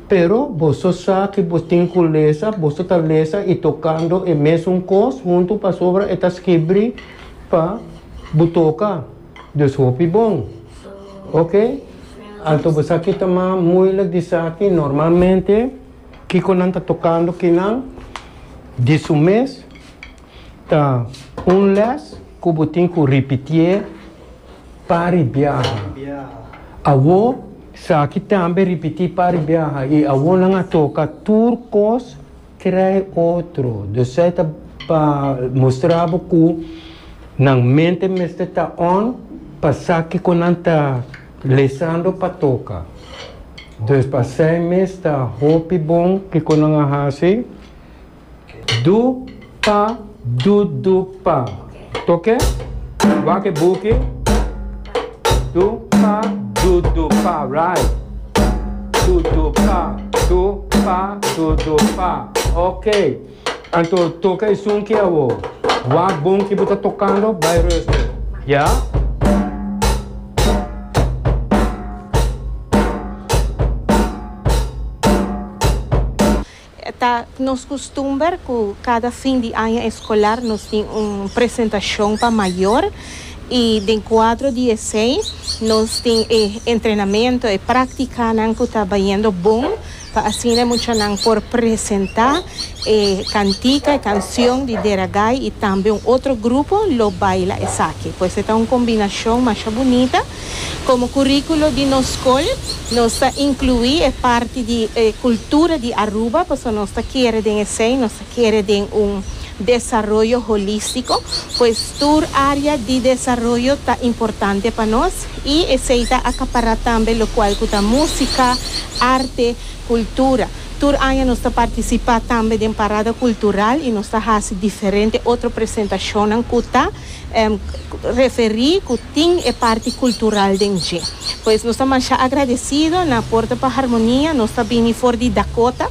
Pero boso sa ki bo tin ku lesa, boso ta lesa i tokando e mesun kos huntu pasobra e ta skibri pa bo toka. Dus hopi bon. Ok. Anto bo sa ki ta mas muilik di esaki, normalmente kiko nan ta tokando kinan di su mes. Ta un les cu bo tin cu ripitié pari biaha. Awo saki tambe ripití pari biaha y awo nan a toca tur cos crai otro. Dus esai ta pa mustra bo cu nan mente mester ta on pa sa kico nan ta lesando pa toca. Dus pa esai mes ta hopi bon kico nan a haci. Du pa du du pa. Toke. Wak e buki. Du pa du du pa. Right. Du du pa. Du pa du du pa. Ok. Anto toka e sunki awo. Wak bon ki bo ta tokando bai ruster. Ya. Ta nos kustumber ku kada fin di aña eskolar nos tin un presentashon pa mayor i den kuadro di esei nos tin e entrenamentu, e praktikanan ku ta bayendo bon pa asina e muchanan por presentá e kantika, e kansion di Deragai i tambe un otro grupo lo baila esaki. Pues e ta un kombinashon masha bunita. Komo kuríkulo di nos skol nos ta inkluí e parti di e kultura di Aruba pasobra nos ta kere den esei nos ta kere den un desaroyo holístiko. Pues tur área di desaroyo ta importante pa nos i esei ta akapará tambe lokual ku ta músika, arte, kultura. Tur aña nos ta partisipá tambe den parada kultural i nos ta hasi diferente otro presentashonnan ku ta. referí ku tin e parti kultural den dje. Pues nos ta masha agradesido, na Puerto pa Harmonia nos ta bini for di Dakota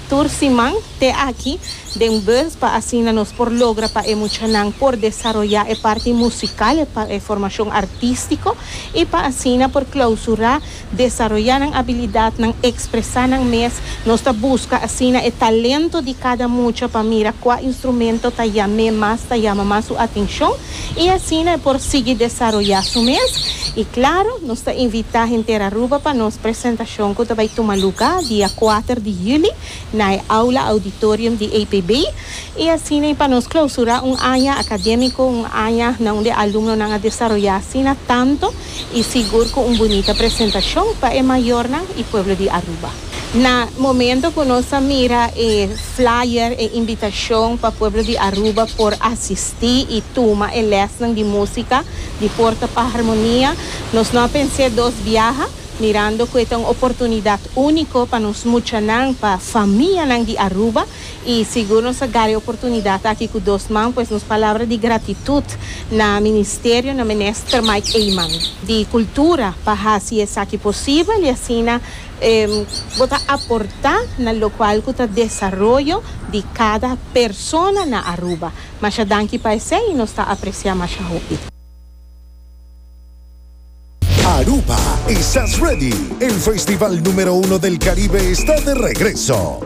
tur siman te aki den bus pa asina nos por logra pa e muchanan por desaroyá e parti musikal, e formashon artístiko i pa asina por klausurá desaroyá nan abilidat, nan ekspresá nan mes. Nos ta buska asina e talento di kada mucha pa mira kua instrumento ta yam'é mas, ta yama mas su atenshon i asina e por sigui desaroyá su mes. I klaru, nos ta invitá henter Aruba pa nos presentashon ku ta bai tuma lugá dia kuater di yüli na e Aula Auditorium di APB i asina i pa nos klausurá un aña akadémiko, un aña na unda e alumnonan a desaroyá asina tantu. y sigur cu un bunita presentacion pa e mayornan y pueblo di Aruba. Na momento cu nos a mira e flyer, e invitacion pa pueblo di Aruba por asisti y tuma e lesnan di musica di Porta pa Harmonia, nos no a pensé dos biaha, mirando cu e ta un oportunidad unico pa nos muchanan, pa famianan di Aruba. y sigur nos a gari oportunidad aki cu dos man pues nos palabra di gratitud na Ministerio na Minister Mike Eman di Cultura pa haci esaki posibel y asina bo ta aporta na locual cu ta desaroyo di cada persona na Aruba. Masha danki pa esey y nos ta aprecia masha hopi. Aruba Estás Ready? El festival numero uno del Caribe está de regreso!